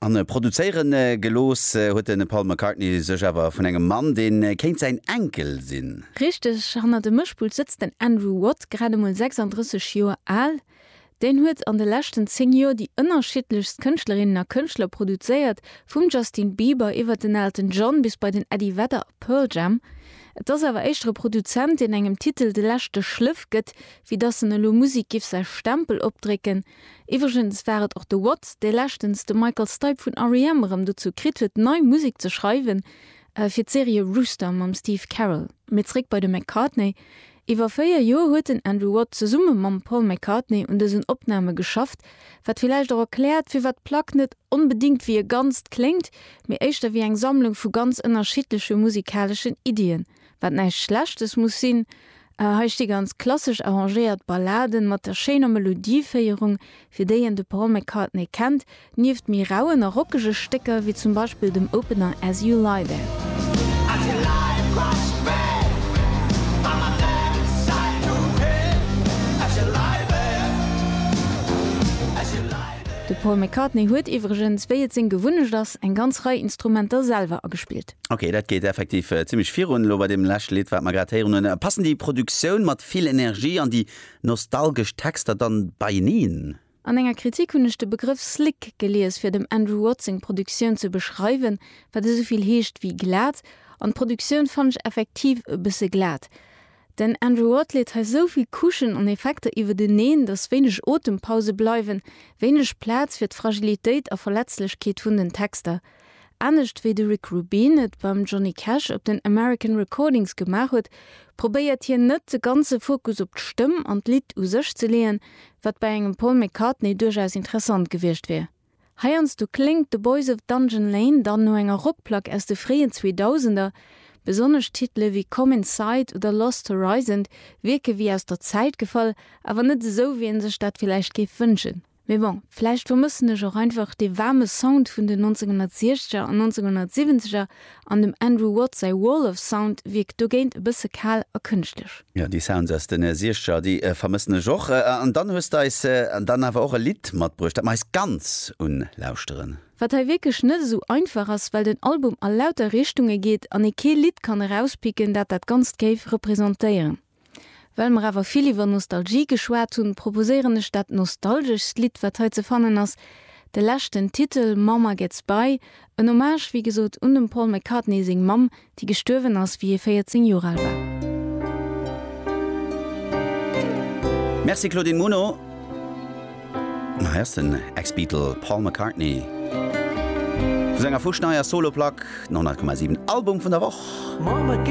An produzéieren gelooss huet den Paul McCartney sech awer vun engem Mann, deen kéint säin Enkel sinn. Richteg, hannert dem Mëschpult sëtzt den Andrew Watt, grad emol 36 Joer al. Deen huet an de leschten 10 Joer déi ënnerschiddlechst Kënschtlerinnen a Kënschtler produzéiert, vum Justin Bieber iwwert den Elton John bis bei den Eddie Vedder a Pearl Jam. Et ass awer éischter e Produzent, deen engem Titel de leschte Schléff gëtt, wéi dass en elo Musek giff säi Stempel opdrécken. Iwwregens war et och de Watt, dee leschtens de Michael Stipe vun REM erëm dozou kritt huet, nei Musek ze schreiwen fir d'Serie Rooster mam Steve Carell. Mee zréck bei de McCartney. Iwwer véier Joer huet den Andrew Watt zesumme mam Paul McCartney un dësen Opname geschafft, wat villäicht och erkläert, firwat d'Plack net onbedéngt wéi e Ganzt kléngt, mee éischter wéi eng Sammlung vu ganz ënnerschiddleche musikaleschen Iddien. wat näischt Schlechtes muss sinn. Hei sti ganz klassesch arrangéiert Balladen mat der schéiner Melodieféierung, fir déi een de Paul McCartney kennt, nieft méi rauen a rockege Stécker, wéi zum Beispill dem Opener As You Lie There. De Paul McCartney huet iwwregens, wéi et seng Gewunnecht ass, eng ganz Rei Instrumenter selwer agespillt. Ok, dat geet effektiv zimlech virun elo bei deem leschte Lidd, wat mer grad héieren hunn. Passen déi Produktioun mat vill Energie an déi nostalgesch Texter dann beieneen? An enger Kritik hunn ech de Begrëff slick gelies fir dem Andrew Watt seng Produktioun ze beschreiwen, wat esouvill heescht wéi glat, an d'Produktioun fannen ech effektiv e bësse glat. Den Andrew Watt leet hei sou vill Couchen an Effekter iwwerteneen, dass wéineg Otempause bleiwen, wéineg Plaz fir d'Fragilitéit a Verletzlechkeet vun den Texter. Anescht wéi de Rick Rubin et beim Johnny Cash op den American Recordings gemaach huet, probéiert hien net de ganze Fokus op d'Stëmm an d'Lidd u sech ze leeën, wat bei engem Paul McCartney duerchaus interessant gewiescht wier. Heiansdo kléngt The Boys of Dungeon Lane dann no enger Rockplack aus de fréien Zweedausender. Besonnesch Titele wéi Come Inside oder Lost Horizon wierke wéi aus der Zäit gefall, awer net esou, wéi ee sech dat villäicht géif wënschen. Mee bon, vläicht vermëssen ech och einfach dee waarme Sound vun den 1960er an 1970er an dem Andrew Watt säi Wall of Sound wierkt dogéint e bësse kal a kënschtlech. Jo, déi Sounds aus den Siexteger, déi vermëssen ech och. An dann hues de eis dann awer och e Lidd matbruecht, dat mer eis ganz un lauschteren. Wat hei wierklech net esou einfach ass, well den Album a lauter Richtunge geet an ee kee Lidd kann erauspicken, dat dat Ganzt géif representéieren. Well mer awer vill iwwer Nostalgie geschwat hunn, proposéieren ech dat nostalgeschst Lidd, wat hei ze fannen ass, de leschten Titel Mama Gets By, en Hommage, wéi gesot, un dem Paul McCartney seng Mamm, déi gestuerwen ass, wéi hie 14 Joer al war. Merci Claudine Muno. Hei ass den Ex-Beatle Paul McCartney vu senger fuschneier Solo-Plack, 100,7 Album vun der Woch.